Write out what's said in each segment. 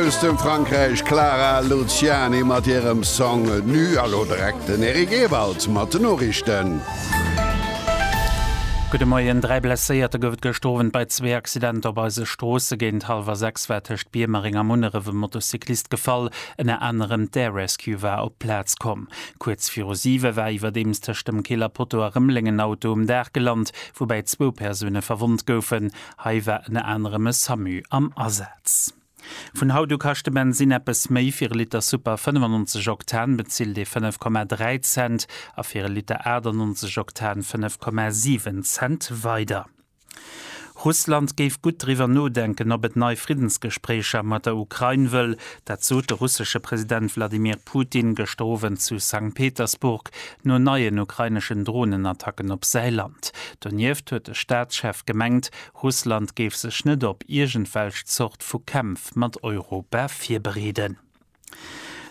Aus dem Frankräich Clara Luciani mat hirem Song Nu a lo direkt den Eric Ewald mat den Noriichten. Gudde Moien, dräi Blesséierte gouf et gëscht Owend bei zwee Accidenter op eise Stroosse. Géint hallwer sechs war tëscht Biermereng a Munneref e Motocyclist gefall, ënner anerem d'Air Rescue war op d'Plaz komm. Kuerz viru siwe war iwwerdeems tëscht dem Keel a Potto a Rëmeleng en Auto um Daach gelant, woubäi zwou Persoune verwonnt goufen. Hei war ënner anerem e Samu am Asaz. Vun haut u kascht de Bensinn eppes méi, fir e Liter Super 95 Oktan bezilt ee 5,3 Cent a fir e Liter 98 Oktan 5,7 Cent weider. Russland géif gutt driwwer nodenken, ob et nei Friddensgespréicher mat der Ukrain wëll. Dat sot de russesche President Wladimir Putin gëschter Owend zu Sankt Petersburg no neien ukraineschen Dronenattacken op säi Land. Donieft huet de Staatschef gemengt, Russland géif sech net op iergendwelch Zort vu Kämpf mat Europa virbereeden.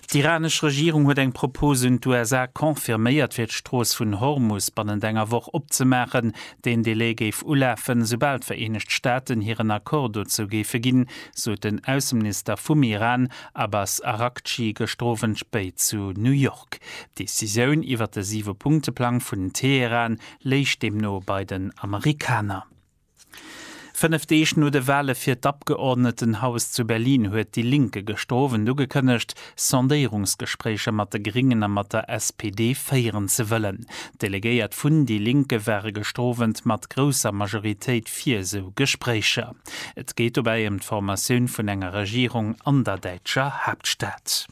D'iranesch Regierung huet eng Propos un d'USA confirméiert, fir d'Strooss vun Hormus bannent enger Woch opzemaachen. Deen Delai géif ulafen, soubal d'Vereenegt Staaten hiren Accord dozou géife ginn, sot den Ausseminister vum Iran Abbas Araghchi gëschter Owend spéit zu New York. D'Decisioun iwwer de Siwe-Punkte-Plang vun Teheran léich deemno bei den Amerikaner. Fënnef Deeg no de Wale fir d'Abgeordnetenhaus zu Berlin huet déi Linke gëschter Owend ugekënnegt, Sondéierungsgespréicher mat de Gréngen a mat der SPD féieren ze wëllen. D'Delegéiert vun déi Linke ware gëschter Owend mat grousser Majoritéit fir esou Gespréicher. Et geet dobäi ëm d'Formatioun vun enger Regierung an der däitscher Haaptstad.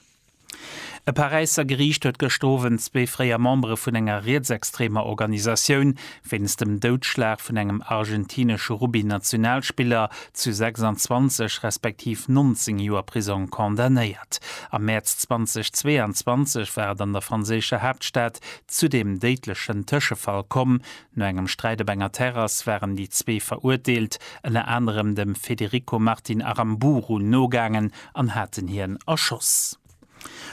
E Paräisser Geriicht huet gëschter Owend zwee fréier Membere vun enger rietsextremer Organisatioun wéinst dem Doudschlag vun engem argentinesche Rugby-Nationalspiller zu 26 respektiv 19 Joer Prisong condamnéiert. Am Mäerz 2022 war et an der franséischer Haaptstad zu deem déidlechen Tëschefall komm, No engem Sträit op enger Terrass waren déi zwee Verurteelt ënner anerem dem Federico Martin Aramburu nogaangen an haten hien erschoss.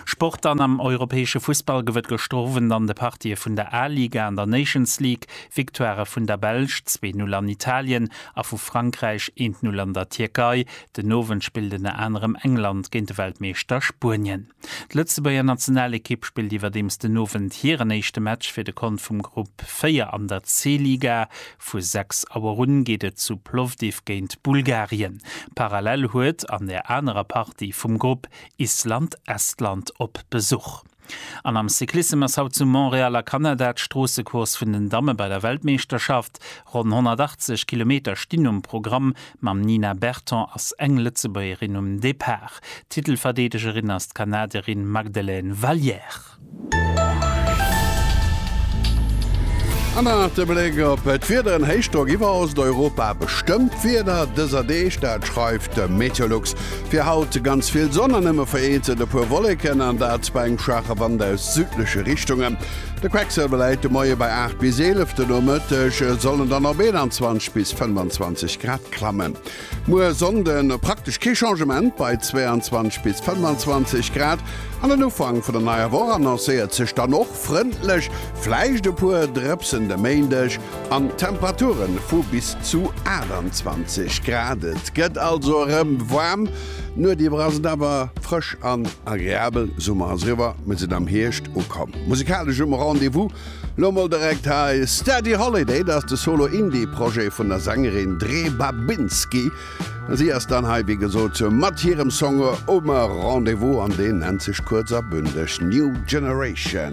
Sport An am europäesche Fussball gouf et gëschter Owend an de Partië vun der A-Liga an der Nations League Victoirë vun der Belsch, zwee Null an Italien a vu Frankräich, eent Null an der Tierkei. Den Owend spillt ënner anerem England géint de Weltmeeschter Spuenien. D'Lëtzebuerger Nationalekipp spillt iwwerdeems den Owend hiren éischte Match fir de Kont vum Grupp 4 an der C-Liga. Vu 6 Auer un geet et zu Plovdiv géint Bulgarien. Parallel huet an der anerer Partie vum Grupp Island Estland op Besuch. An am Cyclissem ass haut zu Montréal a Kanada d'Stroossecourse vun den Damme bei der Weltmeeschterschaft. Ronn 180 Kilometer stinn um Programm, Mam Nina Berton ass eng Lëtzebuergerin um Depart. Titelverdeedegerin ass d'Kanadierin Magdelaine Valliere. An dann nach de Bléck op d'Wieder, en Héichdrock iwwer Osteuropa bestëmmt d'Wieder dëser Deeg, dat schreift de Meteolux. Fir haut ganz vill Sonn an nëmme vereenzelt e puer Wolleken, an dat bei engem schwaache Wand aus südleche Richtungen. De Quecksëlwer läit de Moie bei 8 bis 11, den Nomëtteg soll en dann op 21 bis 25 Grad klammen. Muer Sonnde praktesch kee Changement bei 22 bis 25 Grad an den Ufank vun der neier Woch annoncéiert sech dann och frëndlech, vläicht e puer Drëpsen de Méindeg an Temperature vu bis zu 28 Grad. Et gëtt also erëm waarm. D'Nuet iwwer ass et awer frësch an agreabel. Summer ass eriwwer, mir sinn am Hierscht ukomm. Musikalesch um Rendez-vous lo mol direkt hei Steady Holiday, dat ass de Solo Indie Projet vun der Sängerin Dre Babinski. Si ass dann hei wéi gesot mat hirem Song um Rendez-vous an deen nennt sech kuerz a bündeg New Generation.